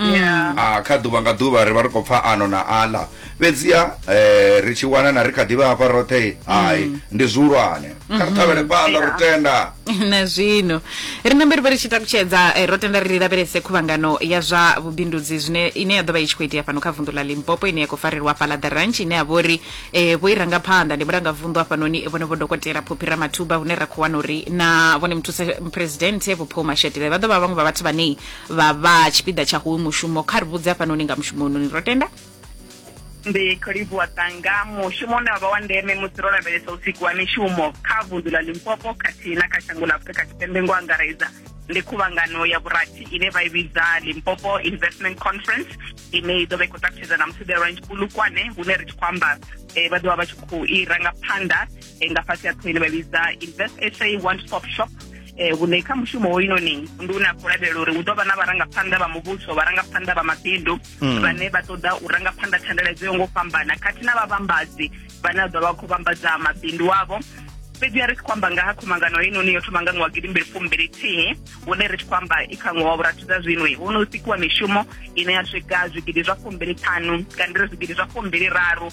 Yeah. Ah, kha ḓuvha nga ḓuvha ri vha ri khou pfa ano na aḽa fhedziha eh, ri tshi wana na ri kha ḓivha hafha roṱhe hai ndi zwihulwane kha ri ṱhavhele phanḓa ro tenda na zwino ri nambe ri vha ri tshi takutshedza eh, ro tenda ri lavhelese khuvhangano ya zwa vhubindudzi zwine ine ya ḓo vha i tshi khou itea fhano kha vunḓu ḽa limpopo ine ya khou farelwa fhaḽa the ranch ine ya vha uri eh, vho i ranga phanḓa ndi mulangavunḓu hafhanoni vhone vho dokotela phophi ramathuba hune ra khou wana uri na vhone muthusa presidente vho paul mashetile vha ḓo vha vhaṅwe vha vhathu vhane vha vha tshipiḓa tsha hoyu mushumo kha ri vhudze hafhanoni nga mushumo unoni ro tenda ndi khou livhuwa ṱanga mushumo une wavha wa ndeme musi ro lavhelesa usiku wa mishumo kha vundu ḽa limpopo khathihi na kha shango ḽa afurika tshipembe ngo angaredza ndi khuvhangano ya vhurathi ine vha i vhidza limpopo investment conference ine i ḓo vha i khou ṱalutshedza na musi the range bulukwane hune ri tshi khou amba um vha ḓovha vha tshi khou i ranga phanḓa e, nga fhasi ha ṱhohoni vha vhidza invest sa one stop shop eh vhune kha mushumo hoyunoni ndi une a khou lavhelela uri hu ḓo vha na vharangaphanḓa vha muvhuso vharangaphanḓa vha mabindu hmm. vhane vha ṱoḓa u rangaphanḓa thandela dzo yo ngo fhambana khathihi na vhavhambadzi vhane a ḓo vha khou vhambadza mabindu avho fhedzi ya ri tshi khou amba nga ha khumangano heinoni yo thoma nga ṅwaha gidimbili fumbili thihi hune ri tshi khou amba i kha ṅwaha wa vhurathu dza zwino hu no sikiwa mishumo ine ya swika zwigidi zwa fumbili ṱhanu kana ri zwigidi zwa fumbili raru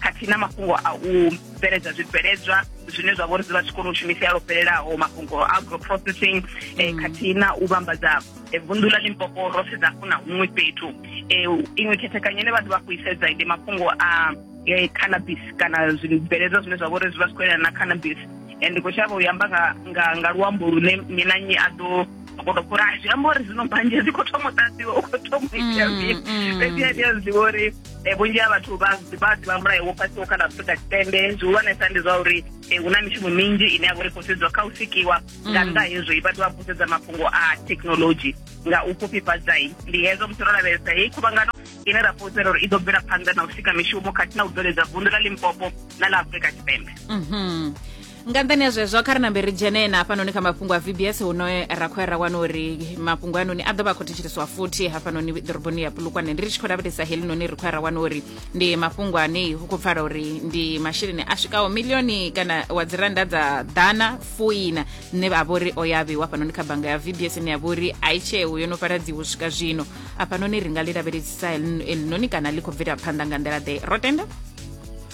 khathihi na mafhungo a u bveledza zwibveledzwa zwine zwa vha uri zwi vha zwi kone u shumisea lwo fhelelaho mafhungo a agro processing eh, mm. khathihi na u vhambadza eh, vunḓu ḽa limpopo ro sedza hafhu na huṅwe fhethu eh, iṅwe khethekanyo ine vha ḓo vha khou isedza ndi mafhungo a eh, cannabis kana zwibveledzwa zwine zwa vha uri zwi vha zwi khou elana na cannabis and ndi khou shavha u yamba nga, nga, nga luambo lune nnyi na nnyi a ḓo kono kulaha zwi amba uri zwino mbanzhe dzi khou thoma u ṱadziwa u khou thoma u itea mm, mini mm. fhedzi a ndi a zwiḓivha uri um vhunzhi ha vhathu vha vha ḓivha mulayo wo fhasiwo kha ḽa afurika tshipembe zwihulwanesa ndi zwa uri um hu na mishumo minzhi ine ya vha uri khou sedziwa kha u sikiwa nga nnḓa hezwi vhathu vha khou sedza mafhungo a thekhinolodzhi nga u fhufhifhadzai ndi hezwo musi ro lavhelesa heyi khuvhangano ine ra fhulufhela uri i ḓo bvela phanḓa na u sika mishumo khathihi na u bveledza vundu ḽa limpopo na ḽa afurika tshipembe mm -hmm. nga nṱhani ha zwezwo kha ri nambe ri dzhene na hafhanoni kha mafhungo a vbs hune ra khou ya ra wana uri mafhungo anoni a ḓo vha a khou thetsheleswa futhi hafhanoni ḓoroboni ya pulukwane ndi ri tshi khou lavhelesa helinoni ri khou ya ra wana uri ndi mafhungo ane hu khou pfala uri ndi masheleni a swikaho milioni kana wa dzi randa dza ḓana fuina ne a vhori o ya vheiwa hafhanoni kha bannga ya vbs ine ya vhori a i tsheo yo no fhaladziwa u swika zwino hafhanoni ri nga ḽi lavhelesisa helinoni kana ḽi khou bvela phanḓa nga nḓila ḓe ro tenda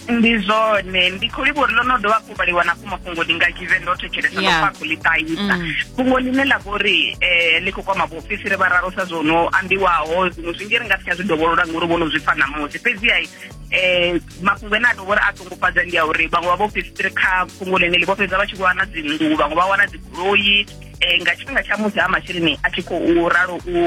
ndi zwone ndi khou livha uri ḽo no dovha hafhu vhaliwa na fhuma fhungo ndi nga kive ndo thetshelesa ndo pfa khou ḽi ṱahisa mm. fhungo ḽine ḽa vha uri um eh, ḽi khou kwama vhaofisiri vha raro sa zwo no ambiwaho zwiṅwe zwinzhi ri nga si tsha zwi dovholola ngori vho no zwi pfa ṋamusi fhedziha um eh, mafhungo ene a tou vhori a ṱungufhadza ndi a uri vhaṅwe vha vhaofisiri kha fhungo ḽine ḽi vho fhedza vha tshi wana dzinngu vhaṅwe vha wana dzigoloi um nga tshifhinga tsha musi ha masheleni a tshi khou ralo u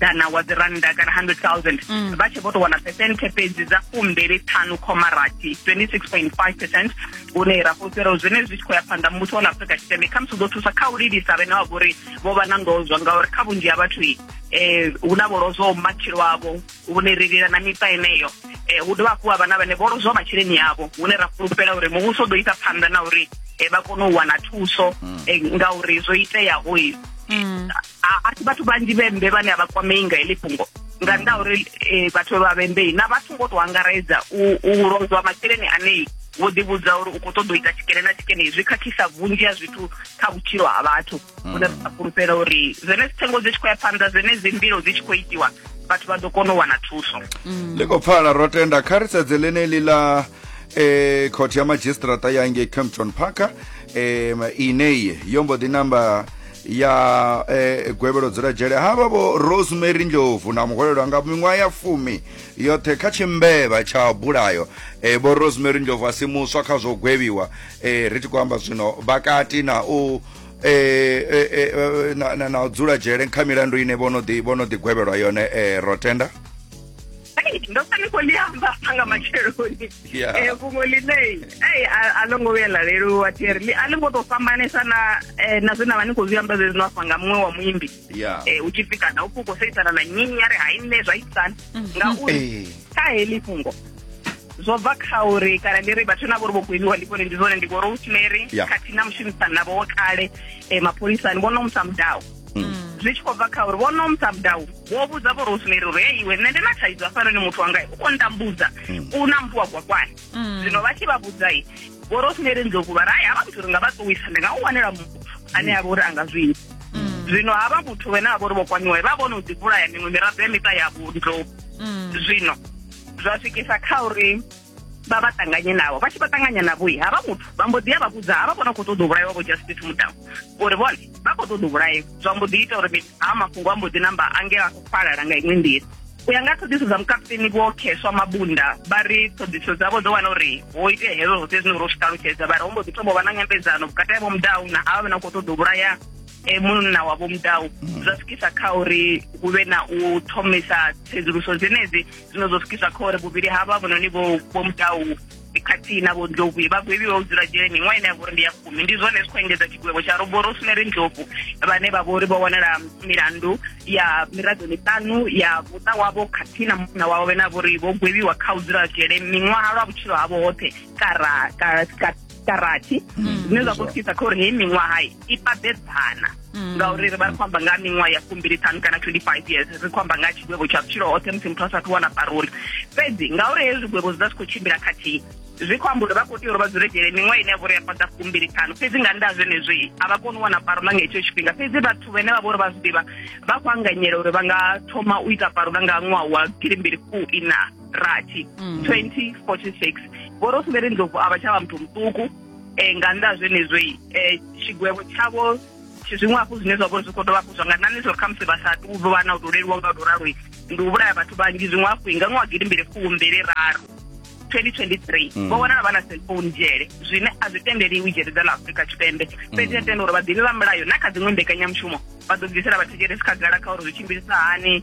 ḓana wa dzi rannda kana 100,000 mm. vha tshe vho tou wana phesenthe fhedzi dza fumbili ṱhanu khoma rathi 26.5 percent hune ra fhulufhela uri zwine zwi tshi khou ya phanḓa muvhuso wa ḽa afurika tshipembe khamusi u ḓo thusa kha u lilisa vhene wa vhori vho vha na ndozwa ngauri kha vhunzhi ha vhathu eh hu na vho lozwaho matshilo avho hune ri lila na miṱa eneyo eh hu dovha hafhu ha vha na vhane vho lozwaho masheleni avho hune ra fhulufhela uri muvhuso u ḓo isa phanḓa na uri eh, vha kone u wana thuso mm. eh, ngauri zwo iteyaho mm. a si vhathu vhanzhi vhembe vhane a vha kwamei nga heḽi fhungo nga nnḓa uri eh, vhathu vha vhembei na vhathu ngo to angaredza u lozwa masheleni anei vho ḓivhudza uri u khou ṱoḓa u ita tshikene na tshikene zwi khakhisa vhunzhi ha zwithu kha vhutshilo ha vhathu hune hmm. a fhulufhela uri zwene dzithengo dzi tshi khou ya phanḓa zwene dzi mbilo dzi tshi khou itiwa vhathu vha ḓo kona u wana thuso hmm. ḽi khou pfala ro tenda kha ri sedze ḽeneḽi ḽa eh khothe ya madzhisiṱiraṱa ya ngei campton parker um inei yo mbo ḓi namba ya eh, gwevhelo dzula dzhele havha vho rosemary ndlovu na muhwelelwa nga miṅwaha ya fumi yoṱhe kha tshimbevha tsha bulayo eh, vho rosemary ndlovu a si muswa kha zwo gwevhiwa eh, ri tshi khou amba zwino vhakati na u eh, eh, eh, eh, na, na, na u dzula dzhele kha milandu ine vho no ḓi vho no ḓi gwevhelwa yone eh, rotenda Hey, ndo fani khou liamba nga matsheloni Yeah. Eh, fhungo ḽine ei a a ḽo ngo vhuya ḽa leluwa theri ḽi- a ḽi ngo tou fhambanesa na eh, na zwe na vha ni khou zwi amba zwezwi no afha nga muṅwe wa muimbi ya Eh, u tshi pfi kana u pfi u khou seisana na nnyi ya ri hai nṋe zwa itisana ngauri Eh. kha heḽi fhungo zwo bva kha uri kana ndi ri vhathu na vhori vho gweliwa ndi vhone ndi zwone ndi vho rosemary Yeah. khathihi na mushumisani navho wo kale um mapholisani vho no musa mudau zwi tshi khou bva kha uri vho no msabdau vho vhudza vho rosemary uri e iwe nṋe ndi na thaidzo hafhanoni muthu wanga u khou ntambudza u na mpfu wa gwakwani zwino vha tshi vha vhudzai vho rosemary ndlovu vha ri ai havha muthu ri nga vha ṱuwisa ndi nga u wanela muthu ane a vha uri a nga zwi ita zwino havha muthu wene a vha uri vho kwaniwa vha vhona u ḓivhulaya miṅwe miraḓo ya miṱa yavho ndlovu zwino zwa swikisa kha uri vha vha ṱanganye navho vha tshi vha ṱanganya navhoi havha muthu vha mbo ḓi ya vha vhudza havha vhona khou ṱoḓa u vhulaiwa vho justice mudamu uri vhone vha khou ṱoḓa u vhulaiwa zwa mbo ḓi ita uri mini haa mafhungo a mbo ḓi namba angela a khou falala nga iṅwe nḓila u ya nga ṱhoḓiso dza mukaputeni vho kheswa mabunda vha ri ṱhoḓiso dzavho dzo wana uri ho itea hezwo zwoṱhe zwine uri u zwi ṱalutshedza vha ri ho mbo ḓi thoma u vha na nyambedzano vhukati ha vho mudau na havha vhe na khou ṱoḓa u vhulaya e munna wa vho mudau zwa swikisa kha uri hu vhe na u thomisa tsedzuluso dzenedzi zwino zwo swikisa kha uri vhuvhili ha vha vhononi vho vho mutau khathihi na vho ndlovu vhagwebi vha u dzula dzhele miṅwaha ine ya vhori ndi ya fumi ndi zwone zwi khou engedza tshigwevho tsha robo rosemary ndlovu vhane vha vhori vho wanala milandu ya miraḓo miṱanu ya muṱa wavho khathihi na munna wawe vhene a vhori vho gwebiwa kha u dzula dzhele miṅwaha lwa vhutshilo havho hoṱhe kara dza rathi mm. zwine zwa khou thusa kha uri heyi miṅwaha i pabedzana mm. ngauri ri vha ri khou amba nga miṅwaha ya fumbiliṱhanu kana 25 years ri khou amba nga tshigwevho tsha vhutshilo hoṱhe musi muthu a sathu wana paroli fhedzi ngauri hezwi zwigwevho zwi vha zwi khou tshimbila khathihi zwi khou amba uri vha khou tea uri vha dzule dzhele miṅwaha ine ya vhori ya fhaḓa fumbiliṱhanu fhedzi nga nnda zwenezwi a vha koni u wana parola nga hetsho tshifhinga fhedzi vhathu vhene vha vha uri vha zwi ḓivha vha khou anganyela uri vha nga thoma u ita parola nga ṅwaha wa gilimbili fuu ina rathi 2046 mm. vho rosemary ndlovu a vha tsha vha muthu muṱuku um eh, nga nnḓa zwenezwoi um eh, tshigwevho tshavho zwiṅwe hafhu zwine zwa vho zwi khou dovha hafhu zwa nga nani zwo ri khamusi vha sa tu vha na u tou leluwa nga u tou raloi ndi u vhulaya vhathu vhanzhi zwiṅwe hafhu i nga ṅwaha gidi mbili fuu mbili raru 2023 mm. vho vhonala vha na cellphone dzhele zwine a zwi tendeliwi dzhele dza ḽa afurika tshipembe mm. fhedzi a tenda uri vhaḓivhi vha mulayo na kha dziṅwe mbekanyamushumo vha ḓo bvisela vhathetshelesi khagala kha uri zwi tshimbilisa hani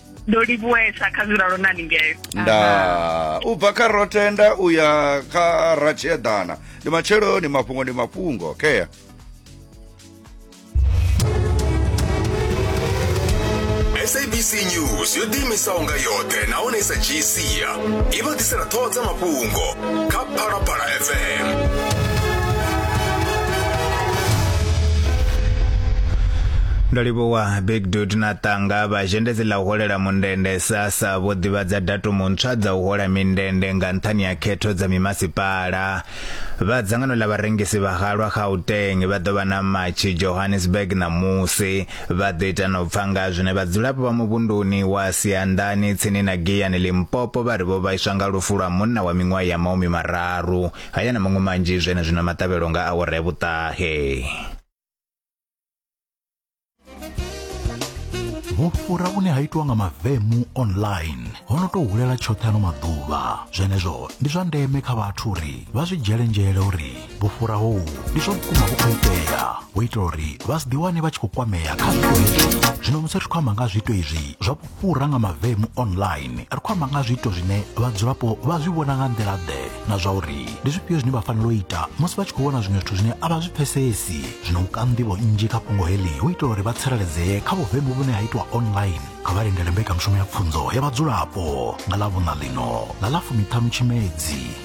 ndo livhuwesa kha zwilalo na ningeo nda u bva kha rotenda u ya kha ratshieḓana ndi matsheloni mafhungo ndi mafhungo okay sabc news yo ḓiimisaho nga yoṱhe nahone sa gc i vha ḓisela ṱhoho dza mafhungo kha phalaphala fm ndo livhuwa big dud na ṱanga vhazhendedzi ḽa u holela mundende sasa vho ḓivhadza datumu ntswa dza u hola mindende nga nṱhani ya khetho dza mimasipala vha dzangano ḽa vharengisi vha halwa gauteng vha ḓo vha na matshi johannesburg ṋamusi Vha ḓo ita na u pfa nga zwine vhadzulapo vha muvhunduni wa Sianḓani tsini na Giyani Limpopo vha ri vho vhaiswa nga lufu lwa munna wa miṅwaha ya maumi mararu. Haya na maṅwe manzhi zwenezwino maṱavhelo nga awara ya vhuṱahe. vhufhura vhune ha itwa nga mavemu online ho no tou hulela tshoṱhe ano maḓuvha zwenezwo ndi zwa ndeme kha vhathu uri vha zwi dzhele nzhele uri vhufhura hou ndi zwa vhukuma vhu khou itea u itela uri vha si ḓiwane vha tshi khou kwamea kha zwiito hezwi zwino musi ri khou amba nga zwiito izwi zwa vhufhura nga mavemu online ri khou amba nga zwiito zwine vhadzulapo vha zwi vhona nga nḓila ḓe na zwa uri ndi zwifhio zwine vha fanela u ita musi vha tshi khou vhona zwiṅwe zwithu zwine a vha zwi pfesesi zwino u ka nḓivho nnzhi kha fhungo heḽi u itela uri vha tsireledzee kha vhuvemu vhune ha itwa online kha vha lindele mbekanyamushumo ya pfunzo ya vhadzulapo nga ḽa vhuṋa ḽino nga ḽa fumiṱhanu tshimedzi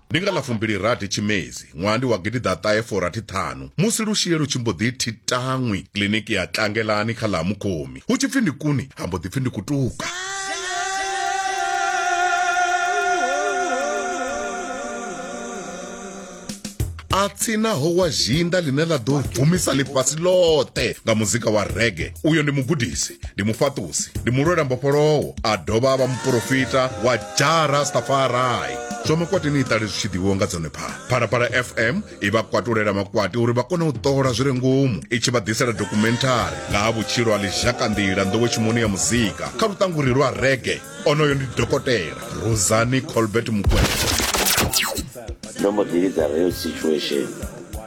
Ndi nga ḽa fumbilirathi Tshimedzi ṅwaha ndi wa gidiḓaṱahe furathi ṱhanu musi Lushie lu tshi mbo ḓi thi taṅwi kiḽiniki ya Tlangelani kha ḽa ha Mukhomi hu tshi pfi ndi kuni ha mbo ḓi pfi ndi kutuka. a tsinaho wa zhinda ḽine ḽa ḓo bvumisa ḽifhasi ḽoṱhe nga muzika wa rege uyo ndi mugudisi ndi mufhaṱusi ndi mulwela mbofholowo a dovha a vha muporofita wa jara stafarai zwa makwati ni iṱale zwi tshi ḓivhiwa nga dzone phala phalaphala fm i vha kwatulela makwati uri vha kone u ṱola zwi re ngomu i tshi vha ḓisela dokumenthari nga ha vhutshilo ha lizhakanḓila nḓowetshimoni ya muzika kha luṱanguri lwa rege onoyo ndi dokotela rosani colbert mukwena ndo mbo ḓi lidza real situation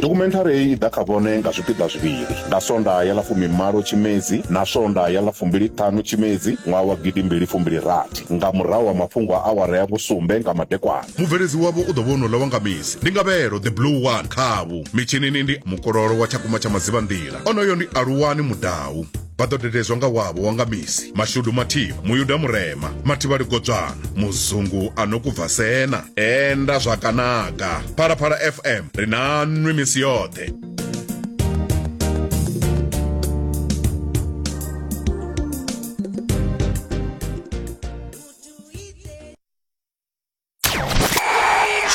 dokhumenthari heyi i ḓa kha vhone nga zwipiḓa zwivhili nga sonda ya ḽa fumimalo tshimedzi na sonda ya ḽa fumbiliṱhanu tshimedzi ṅwaha wa gidimbili fumbili-rathi nga murahu ha mafhungo a awara ya vhusumbe nga madekwana mubveledzi wavho u ḓo vha onola wa nga misi ndi ngavhelo the blue one khavho mitshinini ndi mukololo wa tshakumba tsha madzivhanḓila onoyo ndi aluwani mudau vha ḓo dededzwa nga wavho wa nga misi mashudu mathivha muyuda murema mathivhali godzwana muzungu a no kubva sena enda zwakanaga phalaphala fm ri na nwi misi yoṱhe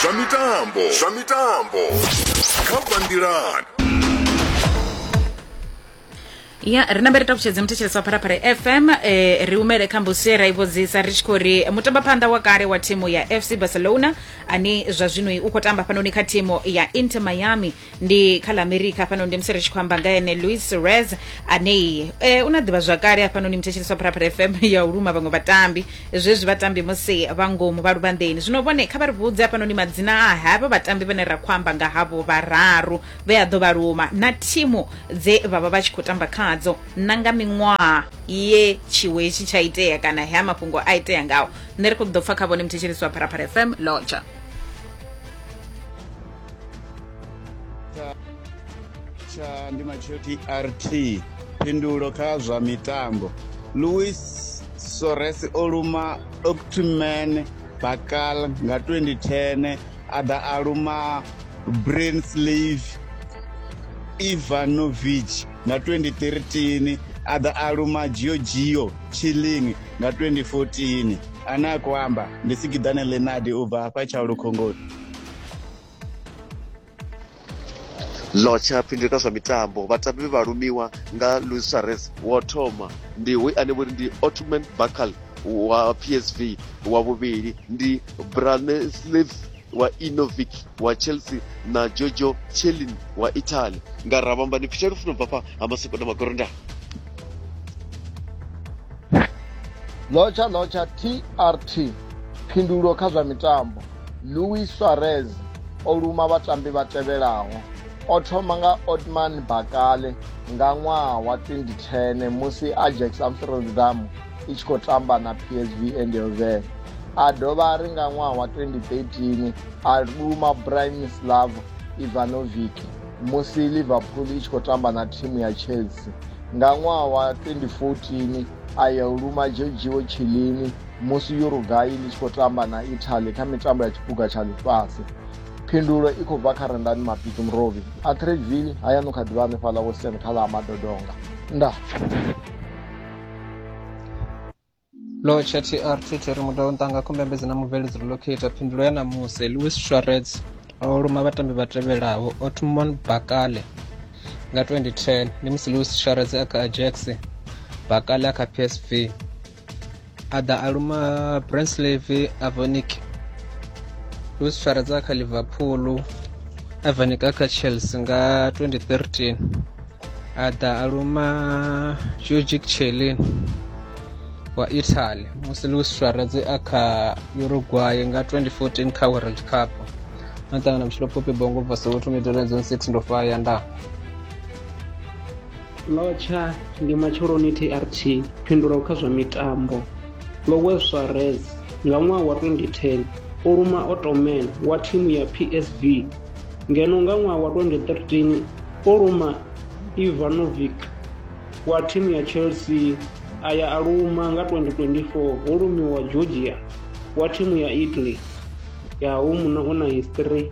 zwa mitambo zwa mitambo kha banngilani ya ri nambe ri takutshedze muthetshelesi wa pharapara fm eh, ri umele kha mbusi ra i vhudzisa ri tshi khou ri mutambaphanḓa wa kale wa thimu ya fc barcelona ane zwa zwino u khou tamba fhanoni kha thimu ya inter miami ndi kha la america hafhanoni ndi musi ri tshi khou amba nga ene louis rez anei e, una ḓivha zwakale hafhanoni muthetshelesi wa pharapara fm ya u luma vhaṅwe vhatambi zwezwi vhatambi musi vha ngomu vha luvhanḓeni zwino vhone kha vha ri vhudze hafhanoni madzina a havha vhatambi vhane ra khou amba nga havho vhararu vhe a ḓo vha luma na thimu dze vha vha vha tshi khou tamba khadzo na nga miṅwaha ye tshiwo hetshi tsha itea kana hea mafhungo a itea ngawo nṋe ri khou ḓo pfa kha vhone muthetshelesi wa pharapara fm lotsha tsha ndi matsheo trt phindulo kha zwa mitambo louis sores o luma octman bakal nga 2010 a ḓa a luma brainslave ivanovic nga 2013 a ḓa a luma giogio chilling nga 2014 ane a khou amba ndi sikiḓane lenadi u bva hafha tsha lukhongoni Lotsha phindulo kha zwa mitambo vhatambi vhe vha lumiwa nga Luis Suarez wo thoma ndi hoyu ane vhori ndi Otman Bakal wa PSV wa vhuvhili ndi Branislav wa Inovic wa Chelsea na Jojo Chelin wa Italy nga ravhamba ni pfisha lufuno bva fha ha masoko na magorondani lotsha lotsha trt phindulo kha zwa mitambo Luis Suarez o luma vhatambi vha tevhelaho o thoma nga Otman Bakale nga ṅwaha wa 2010 musi Ajax Amsterdam i tshi khou tamba na PSV Eindhoven a dovha ri nga ṅwaha wa 2013 a luma Branislav Ivanovic musi Liverpool i tshi khou tamba na thimu ya Chelsea nga ṅwaha wa 2014 a ya u luma Giorgio Chiellini musi Uruguay ḽi tshi khou tamba na Italy kha mitambo ya tshiphuga tsha ḽifhasi. Phindulo i khou bva kha Rendani Mabiki Murovhi. Atteridgeville hayani u kha ḓivha hanefhaḽa Western kha ḽa Madodonga. Nda. Locha TR Twitter mudau ntanga khombembedzi na mubveledzi relocate phindulo ya ṋamusi Louis Suarez o luma vhatambi vha tevhelaho Otmon Bakale nga 2010 ndi musi Louis Suarez a kha Ajax Bakale a kha PSV a ḓa a luma branslave avonic luis fara dza kha liverpool avonic a kha chelsea nga 2013 a ḓa a luma georgic chelin wa italy musi luis suarez a kha uruguay nga 2014 kha world cup na ṱangana vhutshilo phopi bongo bva soweto midoledzon 6 ndo faya ndaa Lotsha ndi matsheloni TRT phindulo kha zwa mitambo. Lowe Suarez nga ṅwaha wa 2010 o luma Ottoman wa thimu ya PSV ngeno nga ṅwaha wa 2013 o luma Ivanovic wa thimu ya Chelsea a ya a luma nga 2024 ho lumiwa Georgia wa thimu ya Italy ya hu muno u na history